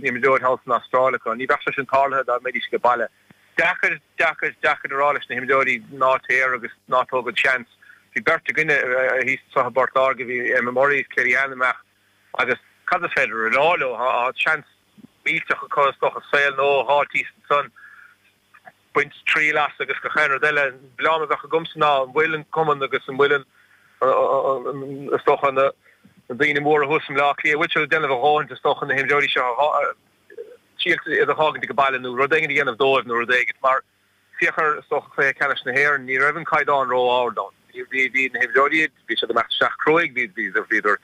imreoir thall san Astráil acu. Ní bheadh sé sin tarlaithe dá mbeidís ag an baile. Deacair, deacair, deacair a rá leis na himreoirí ná téir agus ná tóg an seans. Bhí beirt againne thíos anso i bPort Láirge, bhí Emma Murray is Kellyann amach agus cad is féidir a rá leo? Tá seans millteach acu is dócha, saol nua thíos ansan. baint triail as agus gach aon rud eile. An milleán a bheadh agamsa ná an bhfuil an Cumann agus an bhfuil an, is dócha, na daoine móra thuas i mBleá Cliath, an bhfuil siad ag déanamh a dhóthaint, is dócha, na himreoirí seo a triailt iad a dh'fhágaint ag baile nó rud éigin a dhéanamh dóibh nó rud éigin. Mar féach ar, is dócha, Cluiche Ceannais na hÉireann, ní raibh an caighdeán ró-ard ann. Bhí, bhí na himreoirí, bhí siad ag imeacht isteach cruaidh, bhíodar, bhíodar,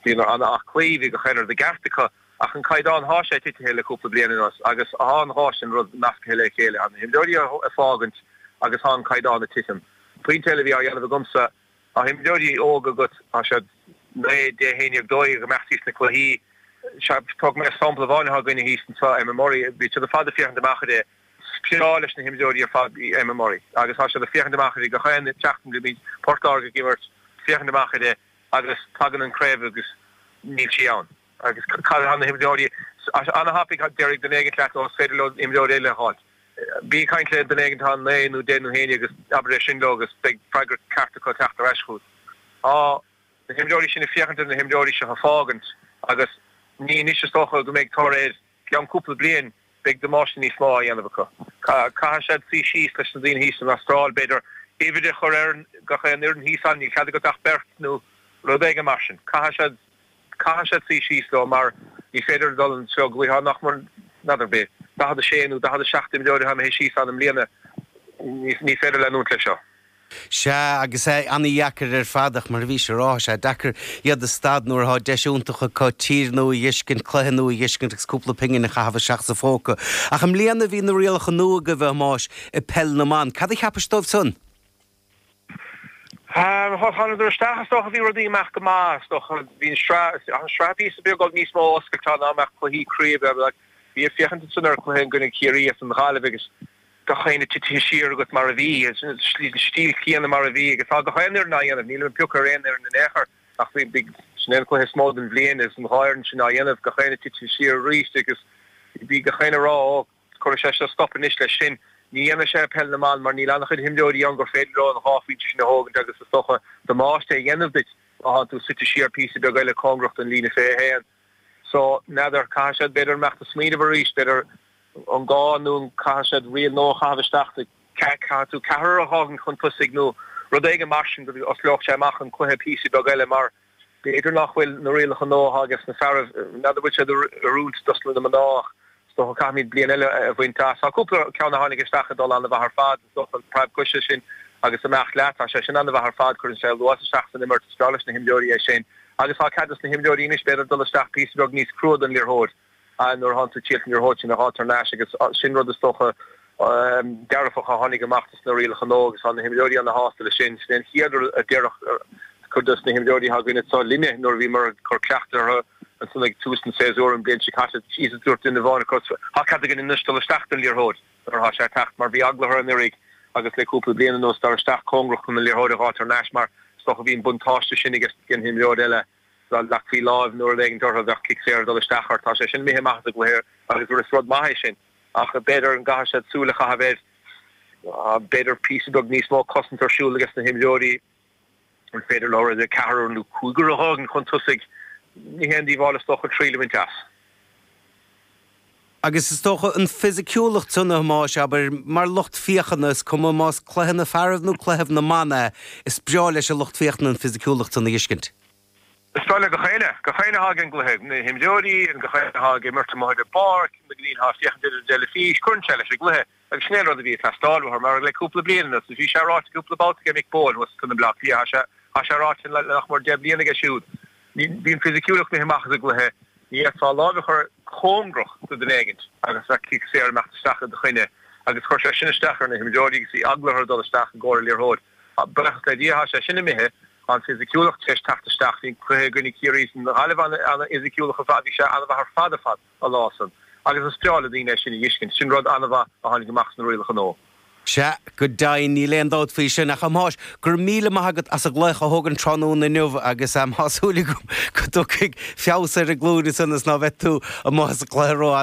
bhíodar ana-aclaí, bhí gach aon rud i gceart acu. Ach an caighdeán thá sé titithe le cúpla bliain anuas agus thá an dhá sin rud nascaithe le chéile, an na himreoirí a fágaint agus thá an caighdeán a titim. An pointe eile a bhí á dhéanamh agamsa, thá imreoirí óga agat, thá siad naoi, deich, h-aon dhéag dó dhéag, ag imeacht dtí sna cluichí. Sea, thug mé sampla amháin athá againne thíos anso, Emma Murray, bhí siad ar fad ag féachaint amach uirthi, is breá leis na himreoirí ar fad í Emma Murray agus thá siad ag féachaint amach uirthi gach aon tseachtain go mbíonn Port Láirge ag imirt, féachaint amach uirthi agus tagann an Craobh agus níl sí ann. Agus cad fá na himreoirí? Ana-thapaidh déarfaidh duine éigin leat, ó is féidir leo imreoir eile a fháilt. Bí ag caint le duine éigin atá naoi nó deich nó haon dhéag agus abair é sin leo agus beidh freagra ceart acu ag teacht ar ais chugat. Tá na himreoirí sin ag féachaint ar na himreoirí seo ag fágaint agus ní anois is dócha go mbeidh tor ar gceann cúpla bliain beidh damáiste níos mó á dhéanamh acu. Caithfidh siad suí síos leis na daoine thíos san Astráil, b'fhéidir uimhir a chur ar gach aon fhoireann thíos ann, níl cead agat ach beirt nó rud éigin mar sin. Caithfidh siad suí síos leo mar ní féidir a dhul an treo go bhfuil. Thá nach mór, n'fheadar, bhí 46 nó 47 imreoir atá imithe síos ann i mbliana, ní féidir leanúint leis seo. Sea, agus é ana-dheacair ar fad, ach mar a bhís a rá, thá sé deacair iad a stad nuair athá deis iontach acu tír nua a dh'fheiscint, cluiche nua a dh'fheiscint agus cúpla pingin a chaitheamh isteach sa phóca. Ach i mbliana bhí na rialacha nua agaibh, a Thomáis, i bpeil na mban. Cad a cheapais dóibh san? Bhuel, thánadar isteach, is dócha. Bhí rudaí ag imeacht go maith, is dócha. Bhí an sraith, thá an sraith píosa beag níos mó oscailte ná a mbeadh cluichí craoibhe, bhí ag féachaint ansan ar an cluiche i gcoinne Ciarraí agus an Ghaillimh agus gach éinne titithe siar agat mar a bhí, an stíl chéanna mar a bhí agus tá gach aon fhoireann á dhéanamh, nílim ag piocadh ar aon fhoireann in aon chor ach bhí, bhí, sin é an cluiche is mó den bhliain agus an dhá fhoireann sin á dhéanamh, gach éinne titithe siar arís agus bhí gach éinne a rá ó, cuirfidh sé seo stop anois leis sin, ní dhéanfaidh sé peil na mban mar níl an-chuid himreoirí ann gur féidir leo an dhá phointe sin a thógaint agus is dócha damáiste a dhéanamh duit má thánn tú suite siar píosa beag eile cóngarach don líne fiche a haon. So, n'fheadar, caithfidh siad, b'fhéidir, imeacht ag smaoineamh arís, b'fhéidir, an gá nó an caithfidh siad riail nua a chaitheamh isteach sa. Caithfidh tú ceathrar a dh'fhágaint chun tosaigh nó rud éigin mar sin go n-osclódh sé amach an cluiche píosa beag eile mar b'fhéidir nach bhfuil na rialacha nua atá ages na fearaibh, n'fheadar bhfuil siad ag oiriúint dos na mná ach. Is dócha caithfimíd bliain eile a bhaint as. Tá cúpla ceann a tháinig isteach ag dul an-mhaith ar fad. Is dócha an preab coise sin agus imeacht leat, tá sé sin an-mhaith ar fad. Cuireann sé luas isteach san imirt. Is breá leis na himreoirí é sin. Agus tá cead ag na himreoirí anois b'fhéidir dul isteach píosa beag níos crua don liathróid nuair atánn tú ag triail an liathróid sin a dh'fháilt thar n-ais agus sin rud is dócha a Ba dearfach a tháinig amach dos na rialacha nua agus tá na himreoirí ana shásta leis sin. Sin é an chéad rud a déarfadh cuid dos na himreoirí atá againn anso linne nuair a bhíomar ag cur cleachtadh orthu ansan ag tús an tséasúir an bliain seo caite. Agus dúirt duine amháin acu tá cead againn anois dul isteach don liathróid nuair atá sé ag teacht mar bhí eagla orthu anuiridh agus le cúpla bliain anuas dul isteach cóngarach chun an liathróid a dh'fháilt thar n-ais mar is dócha bhí an buntáiste sin aige an imreoir eile dá leagfaí láimh nó rud éigin orthu bheadh cic saor ag dul isteach ort. Tá sé sin imithe amach as an gcluiche agus is rud maith é sin. ach b'fhéidir an gcaithfidh siad súil a chaitheamh air b'fhéidir píosa beag níos mó cosaint ar siúl ages na himreoirí an féidir leo rud ar ceathrar nó cúigear a dh'fhágaint chun tosaigh ní haon díobháil is dócha triail a bhaint as. Agus is dócha an fisiciúlacht san a Thomáis, abair, mar lucht féachana is cuma más cluiche na fearaibh nó cluiche na mban é is breá leis an lucht féachana an fisiciúlacht san a fheiscint. Is breá le gach éinne. Gach éinne atá ag an gcluiche. Na himreoirí, gach éinne atá ag imirt amuigh ar an bpáirc, na daoine atá ag féachaint ar an dteilifís, cuireann sé leis an gcluiche. Agus sin é an rud a bhí ag teastáil uathu, mar le cúpla bliain anuas, agus bhí sé ráite cúpla babhta aige Mick Bohan thuas in Bleá Cliath, tá sé ráite le nach mór deich mbliana aige siúd, bhí an fisiciúlacht imithe amach as an gcluiche, ní fhéadfá láimh a chur cóngarach do dhuine éigin agus bheadh cic saor ag imeacht isteach i do choinne. Agus chuir sé sin isteach ar na himreoirí agus bhí eagla orthu dul isteach i gcomhair an liathróid. Buíochas le Dia tá sé sin imithe, an fisiciúlacht tar éis teacht isteach. Bhí an cluiche i gcoinne Ciarraí is an Ghaillimh an-fhisiciúlach ar fad, bhí sé an-mhaith ar fad ar fad an lá san. Agus is breá le daoine é sin a dh'fheiscint. Sin rud an-mhaith a tháinig amach as na rialacha nua. Sea, go deimhin, níl aon dabht faoi sin. Ach, a Thomáis, go raibh míle maith agat as an nglaoch a thógaint tráthnóna inniu agus tá súil agam go dtiocfaidh feabhas ar an nglúin is ionas ná bheidh tú amuigh as an gcluiche ró-fhada.